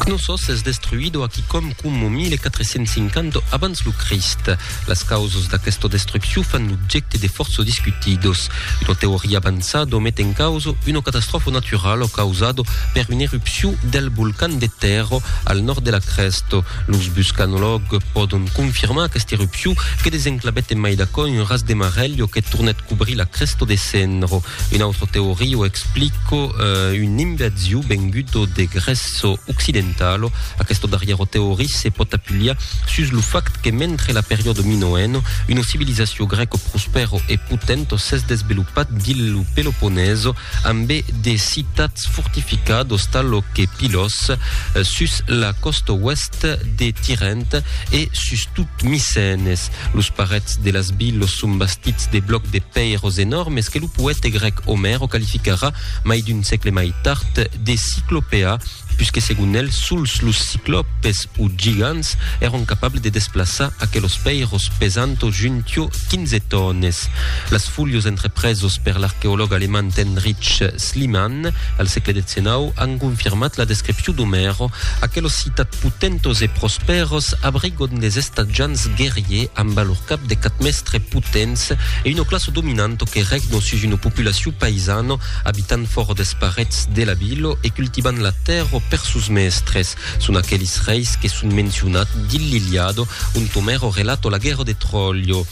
Cnossos es destruido a quicòm coma 1450 abans lo Crist. Las causas d'aquesta destruccion fan l'objècte de fòrça discutidos. Una teoria avançada met en causa una catastròfa naturala causada per una erupcion del volcan de Tero al nòrd de la crèsta. Los buscanològs pòdon confirmar aquesta erupcion que desenclavèt en mai d'aquò un ras de marèlha que tornèt cobrir la crèsta de Cenro. Un autre teoria o explico un inversiu vengudo de Gresso occidentalo. Aquesto darriero teoria se pot apilia sus lo fact que mentre la periodo minoeno uno civilisacio greco prospero e potento s'es desvelopat dins lo Peloponeso ambe de citats fortificados talo que Pylos sus la costa oèst de Tirènt e sus tot Micenes. Los parets de las vilos son bastits de blòcs de pèiros enòrmes que lo poète grèc Omèr o qualificarà, mai d'un sègle mai tard, de ciclopèa, puisque segon el sols los ciclòpes o gigants èron capables de desplaçar aquelos pèiros pesant o juntiò 15 tònes. Las folios entrepresos per l'arqueològ alemand Heinrich Slimane, al sègle xix, an confirmat la descripcion d'Omèro, aquelos citats potentos e prospèros abrigon des estatjants guerriers amb a lor cap de quat mèstres potents e una classa dominanto que regno sus una populacion païsano abitant fòra des parets de la vila e cultivant la tèrra per sos mèstres. Son aquelis reis que son mencionats dins l'Iliado ont Omèro relato la guèrra de Tròllo.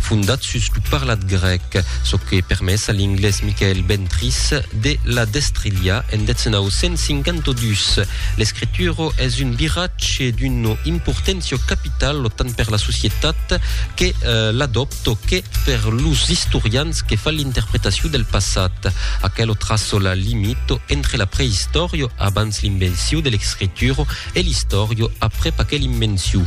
fondat sus lo parlat grèc, çò que permés a l'inglés Michael Ventris de la destrilhar en 1952. L'escritura es un viratge d'una importància capitala tant per la societat que l'adòpta que per los istorians que fan l'interpretacion del passat. Aquela traça la limita entre la preistòria, abans l'invencion de l'escritura, e l'istòrio aprèp aquel immensiu.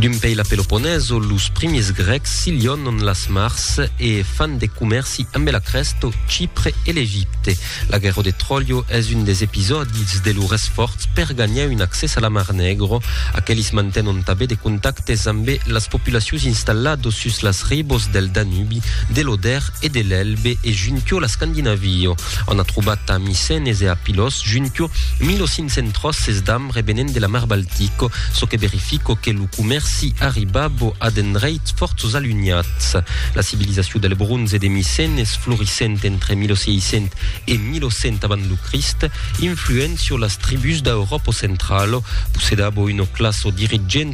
D'un pei la Peloponeso, los primis grècs silhònon las mars e fan de comèrci ambe la Crèsto, Chipre e l'Egipte. La guèrro de Tròlio es un des episòdis de lor esfòrç per ganhar un accès a la Mar Negro. Aquelis mantenon tabé de contactes ambe las populacius installados sus las ribos del Danubi, de l'Oder e de l'Elbe e juntió la Scandinavio. On a trobat a Micenes e a Pylos junquio 1500 tròces d'am revenent de la mar Baltico, çò que verifico que lo comèrci arribabo a d'endreits fòrts alunhats. La civilizacion del bronze de Micenes, florissent entre 1600 e 1100 avant lo Crist, influent sur las tribús d'Auròpo centralo, possedabo una classa dirigenta